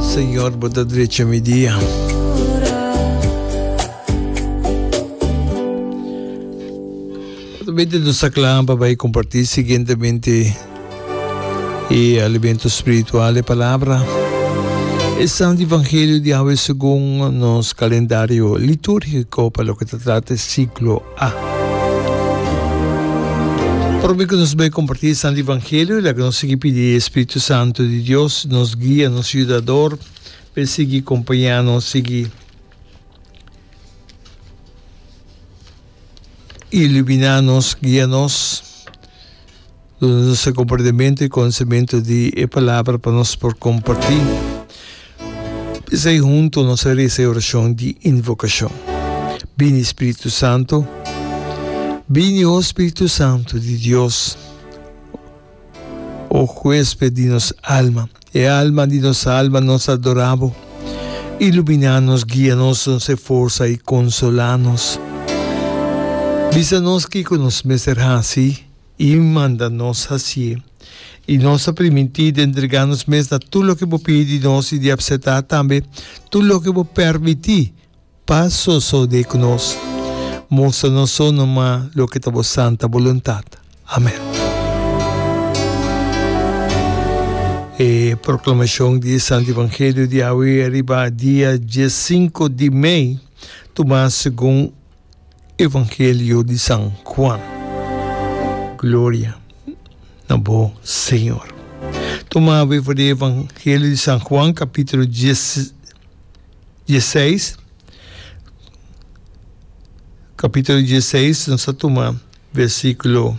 Señor bo ta drecha mi dia. Atabey tin nos ta clan pa bay comparti siguientemente e alimento spiritual e palabra. E Santo Evangelio di Awe segun nos calendario liturgico pa lo que ta trata e ciclo Prome cu nos bai comparti e Santo Evangelio, laga nos sigui pidi e Spiritu Santo di Dios, nos Guia, nos Yudador, pa e sigui compaña nos, sigui ilumina nos, guia nos. Nuster comportamento y conocimento di e palabra pa nos por comparti. Esai hunto nos a reza e oracion di invocacion. Bini Spiritu Santo, bini o Spiritu Santo di Dios, o huesped di nos alma, e alma di nos alma nos adora bo. Ilumina nos, guia nos, nos e forza y consola nos. Bisa nos kico nos mester haci. I manda nos hasié. I nos ta primintí di entregá nos mes na tur loke bo pidi di nos i di apsetá tambe tur loke bo pèrmití pa sosodé ku nos. Mustra nos so numa loke ta bo santa boluntat. Amèn. E proklamashon di e Santu Evangelio di awe riba dia diesinku di mei, tumá segun. Evangelio di San Juan. Gloria na bo Señor. Tuma awe for di Evangelio di San Juan capítulo dies, dieseis. Capítulo dieseis nos a tuma versículo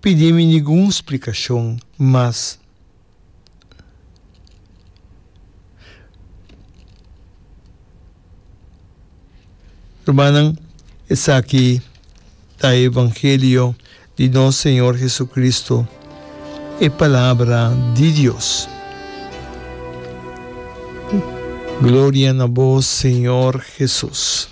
pidi mi ningun splikashon mas. Rumannan, esaki ta e evangelio di nos Señor Jesucristo, e Palabra di Dios. Gloria na bo, Señor Jesus.